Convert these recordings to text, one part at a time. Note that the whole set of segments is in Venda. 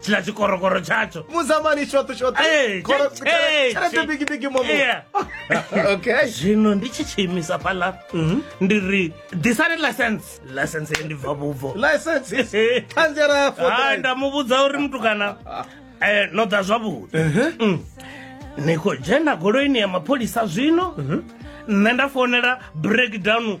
tshila tshikorokoro tshatsho muzamani shoṱoshoṱo Eh, Koro- tshi- eh, tshelede tshi- bigibigi momo Yeah. okay zwino ndi tshi tshiimisa fhaḽa Mhm. ndi ri disani license license ye ndi bva vhubvo license ṱhanziela ya four hai drive. nda mu vhudza uri mutukana eh, no ḓa zwavhuḓi Mm. ni khou dzhena goloini ya mapholisa zwino nṋe nda founela breakdown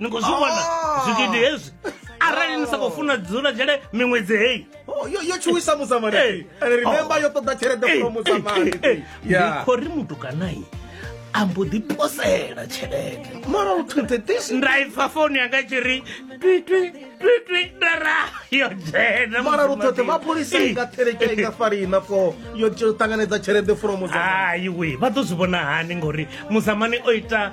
ni khou zwi vhona ah. zwigidi hezwi arali ni sa khou funa dzula dzhele miṅwedzi heyi oh, yo tshuwisa musamani remember oh. yo ṱoḓa tshelede fo musamani ndi khou ri mutukanayi a mbo ḓi posela tshelede mara u thwete this nda ipfa foni yanga i tshi ri twitwi twitwi ndara yo dzhena mara lu thwete mapholisa i nga theleke i nga farina fo yo ṱanganedza tshelede fromo hai we vha ḓo zwi vhona hani ngori muzamani o ita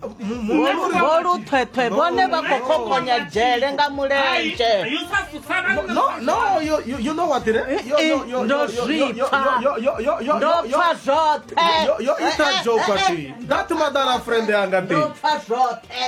vho luthwethwe vhone vha khou khokonya dzhele nga mulenzhe zwoṱhe yo ita jokwati that madara friend yanga ndi pfa zwoṱhe